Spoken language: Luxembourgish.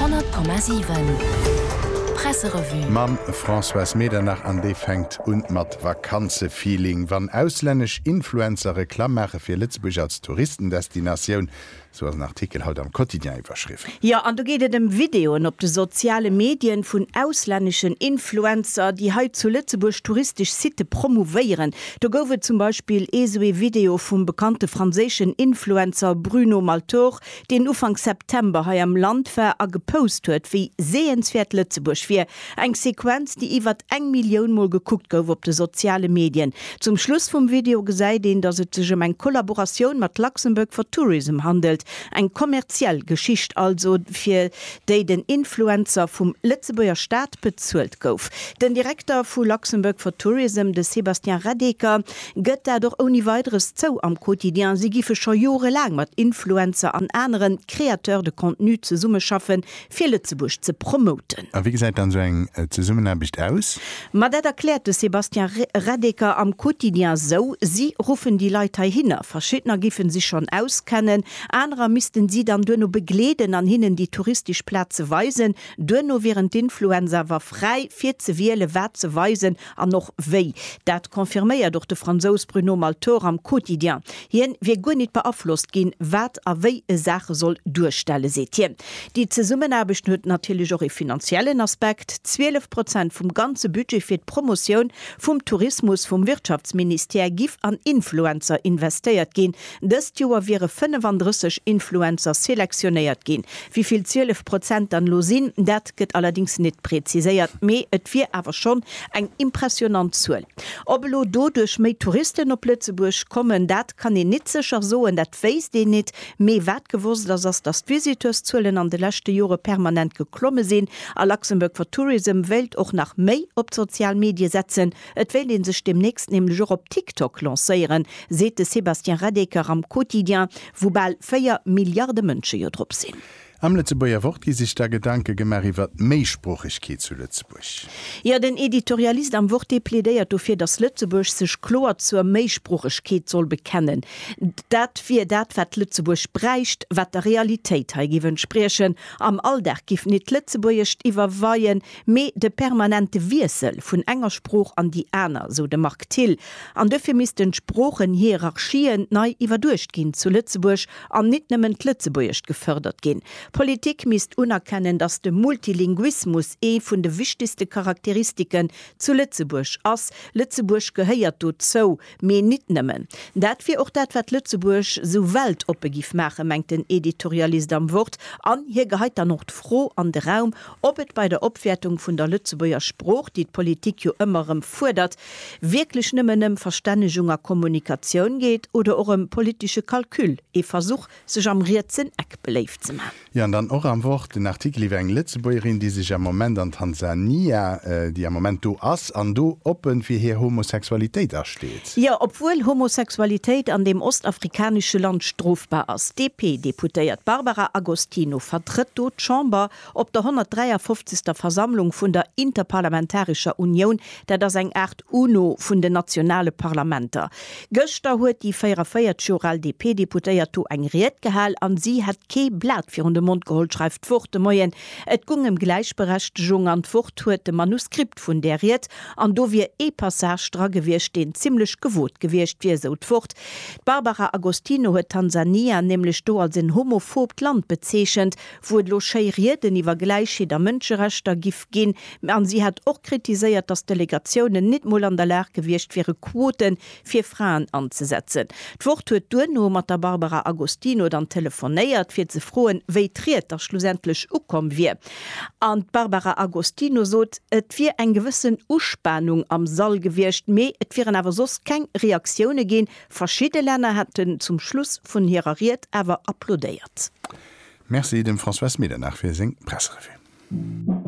Honnert Komma siwen, Presserevue. Mam Françoise Medernach an déi fänkt un mat Vakanzefeeling. Wann auslännesch Influencer Reklamm maache fir Lëtzebuerg als Touristendestinatioun, Sou ass en Artikel haut am Quotidien iwwerschriwwen. Jo, an do geet et ëm Videoen op de soziale Medien vun auslänneschen Influencer, déi hei zu Lëtzebuerg touristesch Sitte promouvéieren. Do gouf et zum Beispill ee sou ee Video vum bekannte franséischen Influencer Bruno Maltor, deen Ufank September hei am Land war a gepost huet, wéi sehenswäert Lëtzebuerg wier, Eng Sequenz, déi iwwert eng Millioun Mol gekuckt gouf op de soziale Medien. Zum Schluss vum Video gesäit een, datt et sech ëm eng Kollaboratioun mat Luxembourg for Tourism handelt, eng kommerziell Geschicht also, fir déi den Influencer vum Lëtzebuerger Staat bezuelt gouf. Den Direkter vu Luxembourg for Tourism, de Sébastien Radeker, gëtt dat och ouni Weideres zou am Quotidien. Si géife scho jorelaang mat Influencer an anere Créateurs de contenus zesummeschaffen, Fir Lëtzebuerg ze promoten. A wéi gesäit dann esou eng Zesummenaarbecht aus? Ma dat erkläert de Sébastien Reddeker am Quotidien esou, Si ruffen déi Leit heihinner. Verschiddener géife sech schonn auskennen, anerer missten si dann duerno begleeden an hinnen déi touristesch Plaze weisen. Duerno wieren d'Influencer awer fräi, fir ze wielen, wat se weisen An och wéi. Dat confirméiert och de Fransous Bruno Malthor am Quotidien. Hien wier guer nit beaflosst ginn, wat a wéi e Saache soll duerstellen, seet hien. Déi Zesummenaarbechten huet natierlech och e finanziellen Aspekt. 12 Prozent vum ganze Budget fir d'Promotioun vum Tourismus vum Wirtschaftsministère giff an Influencer investéiert ginn, Dëst Joer wiere 35 Influencer selektionéiert ginn. Wivill 12 Prozent dann elo sinn, dat gëtt allerdéngs net preziséiert, mee et wier awer schonn eng impressionant Zuel. Ob elo doduerch méi Touristen op Lëtzebuerg kommen, dat kann een nit sécher soen, dat wéisst een nit. Mee wat gewosst ass, ass dass d'Visiteurszuelen an de leschte Jore permanent geklomme sinn a Luxembourg for Tourism wéilt och nach méi op d'sozial Medie setzen, Et wéilt ee sech deemnächst nämlech och op TikTok lancéieren, seet de Sébastien Radeker am Quotidien, wou bal 4 Milliarde Mënsche jo drop sinn. Am Lëtzebuerger Wort gi sech da Gedanke gemaach iwwer d'Méisproochegkeet zu Lëtzebuerg. Jo, den Editorialist am Wort, dee plädéiert dofir, datt Lëtzebuerg sech kloer zur Méisproochegkeet soll bekennen. Dat wier dat, wat Lëtzebuerg bräicht, wat der Realitéit hei géif entspriechen. Am Alldag géif een et Lëtzebuergescht iwwerweien. Mee de permanente Wiessel vun enger Sprooch an déi aner, sou de Marc Thill, an duerfir missten d'Sproochen-Hierarchien nei iwwerduecht ginn zu Lëtzebuerg an nit nëmmen d'Lëtzebuergescht gefërdert ginn. D'Politik misst unerkennen, datt de Multilinguismus ee vun de wichtegste Charakteristiken zu Lëtzebuerg ass. Lëtzebuerg gehéiert dozou. Mee nit nëmmen. Dat wier och dat, wat Lëtzebuerg sou weltoppe giff maachen, mengt den Editorialist am Wort, an hie geheit dann och d'Fro an de Raum, ob et bei der Opwäertung vun der Lëtzebuerger Sprooch, déi d'Politik jo ëmmer erëm fuerdert, wierklech nëmmen ëm Verstännegung a Kommunikatioun geet oder och ëm politesche Calcul, ee Versuch, sech am rietsen Eck beléift ze man. Jo, an dann och am Wort en Artikel iwwer eng Lëtzebuergerin, déi sech am Moment an Tansania, déi am Moment do ass an do oppen fir hir Homosexualitéit asteet. Jo, obwuel Homosexualitéit an deem ostafrikanesche Land strofbar ass. D'DP-Deputéiert Barbara Agostino vertrëtt do d'Chamber Op der 153. Versammlung vun der Interparlamentarescher Unioun, dat ass eng Aart UNO vun den nationale Parlamenter, gëschter huet déi 44 Joer al DP-Deputéiert do eng Ried gehal an si hätt kee Blat virun de Mond geholl, schreift d'Wort de Moien. Et gung ëm Gläichberechtegung an d'Wort huet de Manuskript vun där Ried an do wier ee Passage dra gewiescht, deen zimlech gewot gewiescht wier, sou d'Wort. D'Barbara Agostino huet Tansania nämlech do als en homophoobt Land bezeechent. wou et elo schéi Rieden iwwer Gläichheet a Mënscherechter giff ginn, an si hätt och kritiséiert, datt d'Delegatiounen nit mol an der Lag gewiescht wiere Quote fir Fraen anzesetzen. D'Wort huet duerno mat der Barbara Agostino dann telefonéiert, fir ze froen, wéi d'Ried da schlussendlech ukomm wier. An d'Barbara Agostino sot, et wier eng gewëssen Uspanung am Sall gewiescht, mee et wieren awer soss keng Reaktioune ginn, Verschidde Länner hätten zum Schluss vun hirer Ried awer applaudéiert. Merci dem François Smidenach fir seng Presserevue.